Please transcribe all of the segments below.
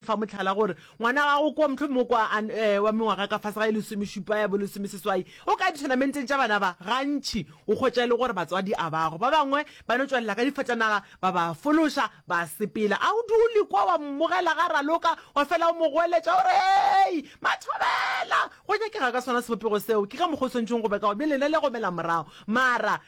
Fa mohlala, gore ngwana wa gago kua, mohlomongwe kua a wa mengwaga ka fase ga e lesomešupa ya bo lesomeseswai, o ka dithonamenten tša bana ba, gantši o hwetša e le gore batswadi a bago. Ba bangwe ba no tšwelela ka difatanaga, ba ba fološa, ba sepela. A o dule kua wa mmogela ga a raloka, wa fela o mo goeletša, o re, Hei, Mathobela! Go nyakega ka sona sebopego seo. Ke ka mokgwa o swanetšego go be ka gona. Bjale yena le gomela morago. Mara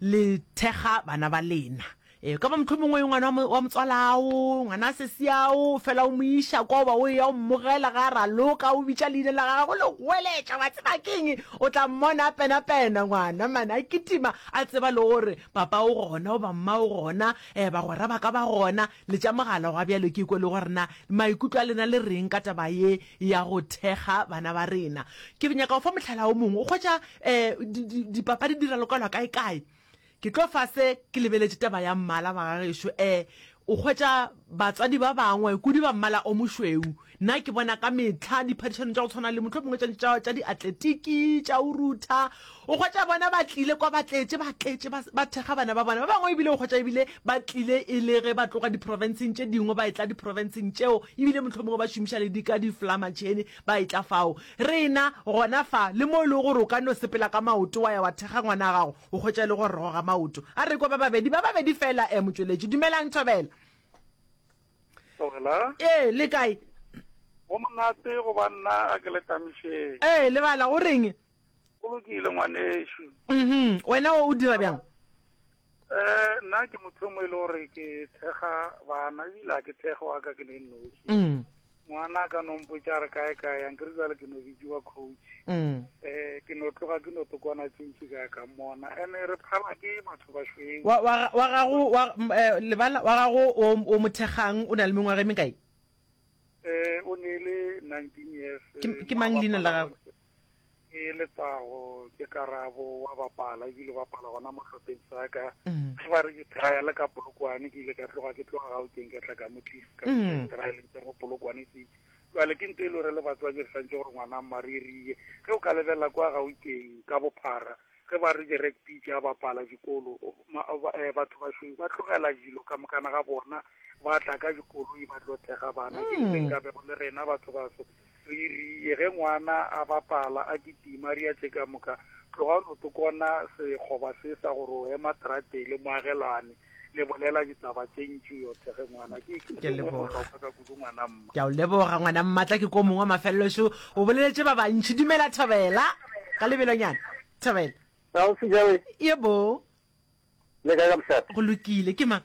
le thekga bana ba lena. E ka ba mohlomongwe e ngwana wa motswalao, ngwana a sesiao, fela o mo iša kwa oba o eya o mmogela ga a raloka, o bitša leina la gagwe, go le goeletša, wa tseba keng, o tla mmona a penapena ngwana mane, a kitima, a tseba le gore papa o gona oba mma o gona, um bagwera ba ka ba gona. Le tša mogala gwa bjalo ke kwe le gore na maikutlo a lena le reng ka taba ye ya go thekga bana ba rena. Ke nyaka go fa mohlala o mongwe. O hwetša um dipapadi di ralokelwa kae-kae. Ke tlo fa se, ke lebeletše taba ya mmala ba ga gešo. Um O hwetša batswadi ba bangwe kudu ba mmala o mošweu, Nna ke bona ka mehla diphadišano tša go tshwana le mohlomongwe tša tša tša diatletiki tša o rutha o kgwetša bona ba tlile kwa ba tletše ba tletše ba ba thekga bana ba bona ba bangwe ebile o kgwetša ebile ba tlile e le ge ba tloga diprofenseng tše dingwe ba e tla diprofenseng tšeo ebile mohlomongwe ba šomiša le dika diflamatšhene ba e tla fao rena gona fa le mo e lego gore o ka no sepela ka maoto wa ya wa thekga ngwana a gago o kgwetša e le go roga maoto a re kwa ba babedi ba babedi fela um motšweletši dumelang thobela Wela. Ee, le kae? Go monate go ba nna a ke le tamišeng. Ee, lebala, o reng? Go lokile ngwanešu. Mhm, wena o dira bjang? Eh, nna ke motho e mongwe e le gore ke thekga bana ebile a ke thekge wa ka ke le noši. Mm. Ngwana a ka no mpotša a re kae kae, a nkere jale ke no bitšiwa coach. Mm. Eh, ke no tloga ke no tokwana tše ntši ka ya ka mmona. Ene re phala ke batho ba šweng. Wa, wa, wa gago, wa, m- eh, lebala, wa gago o, o mothekgang o na le mengwaga e mekae? Eh, o ne e le 19 years. Ke, eh, ke mang leina la gagwe? ke letsago ke karabo wa bapala ebile bapala gona mo hlopheng sa ka mm. ge ba re ke trial ka polokwane ke ile ka tloga ke tloga ga o keng ka tla ka mo tlisa ka mm. trial tsa go polokwane ke jale ke nto e le re le batswadi re santse gore ngwana maririye ge o ka lebelela kwa ga o keng ka bophara ge ba re di-rugby ke a bapala dikolo eh, batho bašweu ba tlogela dilo ka mokana ga bona ba tla ka dikoloi ba tlo thega bana ke mm. ka bego le rena batho baso Re rie ge ngwana a bapala, a kitima, re a tšeka moka, Tlogani o tokona sekgoba se sa gore o ema tratele, moagelwane, le bolela ditaba tše ntši yothe ge ngwana. Ke, ke Ke sengwe leboga. bohlokwa ka kudu ngwana mma. Ke a o leboga, ngwana mmatla, ke ko mongwe wa mafelelo šo. O boleletše ba bantši. Dumela, Thobela. Ka lebelonyana. Thobela. Ausi Joey, Yebo. le kae ka mošate? Go lokile. Ke mang?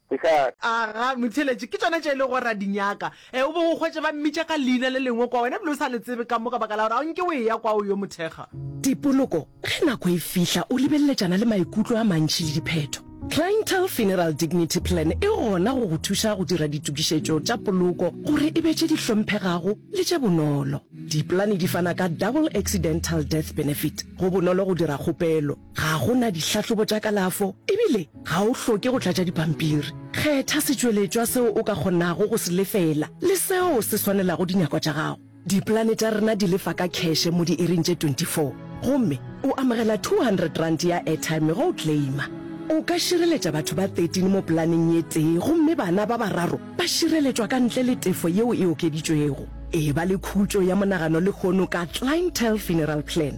Ke ka. Aga, motheeletši, ke tšona tše e lego gore ra di nyaka. E, o be o hwetše ba mmitša ka leina le lengwe kwa, wena ebile o sa le tsebe ka mo, ka baka la gore ga o nke o eya kwa, o yo mo thekga. Dipoloko, ge nako e fihla, o lebeleletšana le maikutlo a mantši le diphetho. Clientele Funeral Dignity Plan e gona go go thuša go dira ditokišetšo tša poloko gore e be tše di hlomphegago le tše bonolo. Dipolane di fana ka Double Accidental Death Benefit. Go bonolo go dira kgopelo. Ga go na dihlahlobo tša kalafo e bile ga o hloke go tlatša dipampiri. Kgetha setšweletšwa seo o ka kgonago go se lefela le seo se swanelago dinyakwa tša gago. Dipolane tša rena di lefa ka kheshe mo diiring tše 24 gomme o amogela R200 ya airtime ge o claima. O ka šireletša batho ba 13 mo polaneng ye tee gomme bana ba bararo ba šireletšwa ka ntle le tefo yeo e okeditšwego. Eba le khutšo ya monagano lehono ka Clientele Funeral Plan.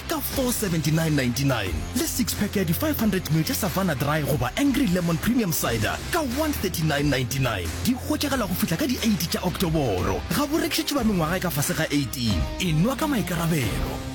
ka R479.99 le six-pack ya di 500ml tša Savanna Dry goba Angry Lemon Premium Cider ka R139.99. Di hwetšagala go fihla ka di 8 tša Oktoboro. Ga bo rekišetšwe ba mengwaga e ka fase ga 18. E nwa ka maikarabelo.